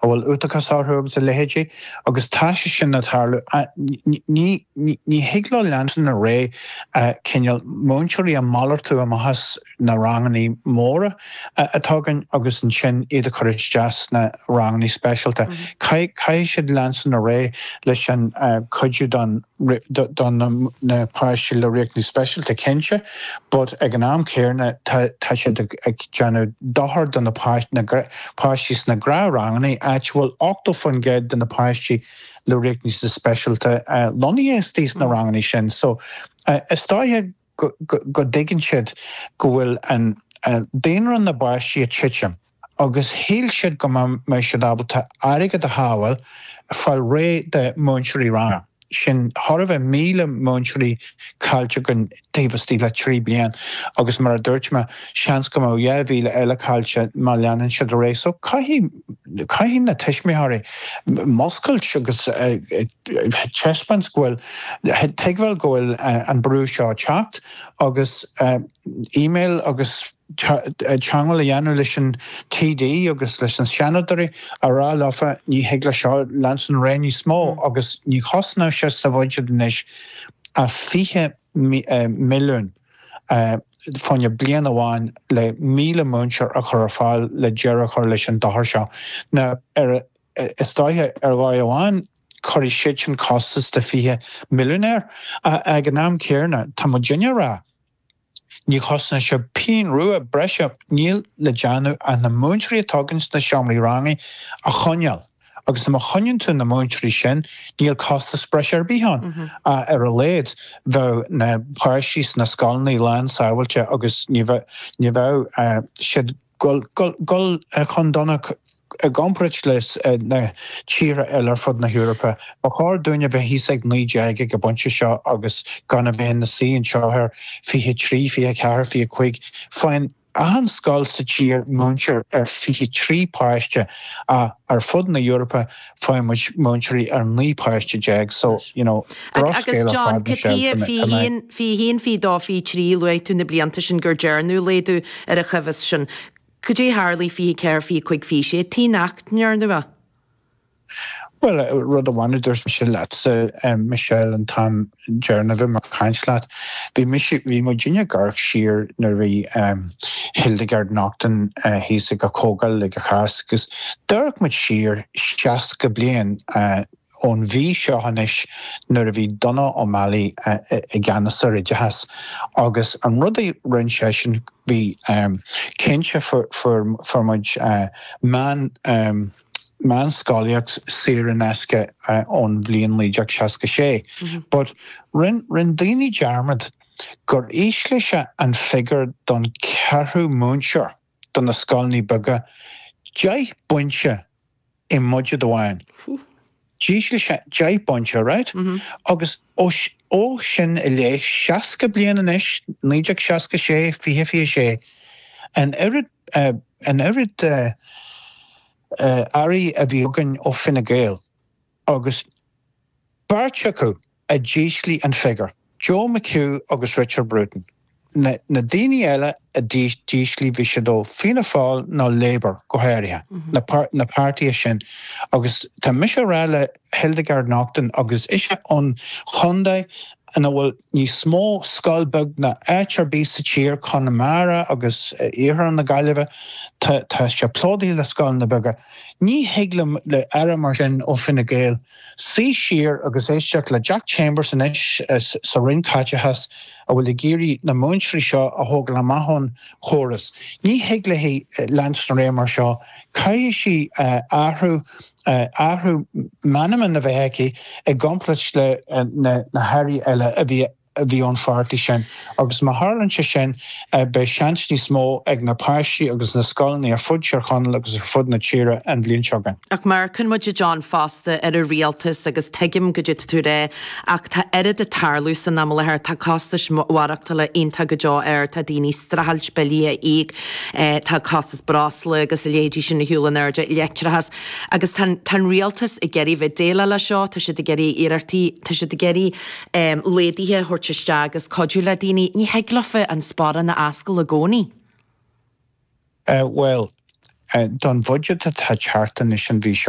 a bhfuil uathachas orthu agus a leithéidí agus tá sé sin ag tarlú ní thig leo leanstan ar aghaidh cineál múinteoirí a malartú amach as na ranganna móra atá againn agus ansin iad a chur isteach sna ranganna speisialta. Caithfidh siad leanstan ar aghaidh leis an cuidiú do na páistí le riachtanais speisialta cinnte but ag an am céarna tá siad ag déanamh dochar do na páistí na páistí sna gnáthranganna, áit a bhfuil 80 faoin gcéad de na páistí le riachtanais speisialta lonnaithe istigh sna ranganna sin. So is dóiche go dtuigeann siad go bhfuil an daonra na bpáistí ag titim agus shíl siad go mbeadh siad ábalta airgead a shábháil fáil réidh de múinteoirí ranga. sin thart fá míle múinteoirí caillte againn taobh istigh de trí bliain agus mar a dúirt mé, seans go mbeadh dhá mhíle eile caillte má leanann siad ar aghaidh. So caithfidh, caithfidh na tuismitheoirí muscailt agus teispáint go bhfuil, tuigbheáil go bhfuil an brú seo ag teacht agus email agus. teangmháil a dhéanamh leis an TD agus leis na Seanadóirí a rá leofa ní thig leis seo leanstan ar aghaidh níos mó agus ní chosnóidh sé sa bhudget anois ach fiche milliún fá choinne bliain amháin le míle múinteoir a chur ar fáil le deireadh a chur leis an dochar seo. Now is dóiche ar dhóigh amháin cuirfidh siadsan costas de fiche milliún air ach ag an am céarna tá muidinne ag rá Ní chosnaíonn sé pingin rua breise. Níl le déanamh ach na múinteoirí atá againn sna seomraí ranga a choinneáil agus má choinníonn tú na múinteoirí sin níl costas breise ar bith ann. Ach ar a laghad bheadh na páistí sna scoileanna slán sábháilte agus ní bheadh ní bheadh siad Ag gabháil chun donacht i gcomparáid le na tíortha eile ar fud na hEorpa. Ba chóir dúinn a bheith thíos ag naoi déag ag an bpointe seo agus gan a bheith ina suí anseo ar fiche trí, fiche ceathair, fiche cúig. Faigheann achan scoil sa tír múinteoir ar fiche trí páiste ach ar fud na hEorpa faigheann muid múinteoir ar 9 páiste déag so you know bruscail ar fad Michelle tá mé. Agus John, cad tuige fiche haon, fiche dó, fiche trí, luaigh tú na blianta sin gur dearnadh laghdú ar an chóimheas sin. Caidé a tharlaigh fiche 4, fiche 5, fiche 6, tuige nach ndearnadh é. Bhuel rud amháin a dúirt mise leatsa Michelle an t-am deireanach a bhí mé ag caint leat. Bhí mise, bhí muidinne ag amharc siar nuair a bhí ehm Hildegard Naughton eh thíos ag a' Chomhdháil ag an Cháisc agus d'amharc muid siar seasca bliain eh ón mhí seo anois nuair a bhí Donogh O'Malley eh i gceannas ar oideachas agus an rud a rinn seisean bhí ehm cinnte fuair fuair muid eh meán ehm meánscolaíocht saor in aisce ón bhliain 1966. But rinn rinn daoine dearmad gur ísligh sé an figiúr don ceathrú múinteoir do na scoileanna beaga deich bpointe i mbudget amháin. D'ísligh sé deich bpointe, right? Agus ó, ó sin i leith, seasca bliain anois, 1966, fiche, fiche sé, an oiread, an oiread Airí a bhí againn ó Fine Gael agus beirt acu, a d'ísligh an figiúr. Joe McHugh agus Richard Bruton na daoine eile a d'ísligh bhí siad ó Fianna Fáil nó Labour go háirithe, na páirtithe sin. Agus tá mise ag rá le Hildegarde Naughton agus ise ón chontae ina bhfuil níos mó scoil beag ná áit ar bith sa tír, Conamara agus iarthar na Gaillimhe, tá sé plódaithe le scoileanna beaga, ní thig le, le aire mar sin ó Fine Gael, Suí siar agus éisteacht le Jack Chambers anois sa Roinn Caiteachais a bhfuil ag iarraidh na múinteoirí seo a thógáil amach ón chóras. Ní thig léi leanstan ar aghaidh mar seo. Caithfidh sí athrú, athrú meanman a bheith aici i gcomparáid le na hAirí eile a bhí a bhí ón pháirtí sin agus má tharlann sé sin beidh seans níos mó ag na páistí agus na scoileanna ar fud Thír Chonaill agus ar fud na tíre an bhliain seo chugainn. Ach amharcann muid a John fosta ar an rialtas agus tuigim cad é atá tú a rá ach tá oiread ag tarlú san am i láthair, tá costas maireachtála iontach go deo ard, tá daoine ag streachailt billí a íoc, tá costas breosla agus a leithéidí sin ag dul in airde, leictreachas agus tá an rialtas ag iarraidh bheith ag déileáil le seo, tá siad ag iarraidh iarrachtaí, tá siad ag iarraidh. laghduithe a thabhairt isteach agus cuidiú le daoine, ní thig leofa an sparán a fhoscladh i gcónaí. Bhuel, don bhudget atá ag teacht anois an mhí seo,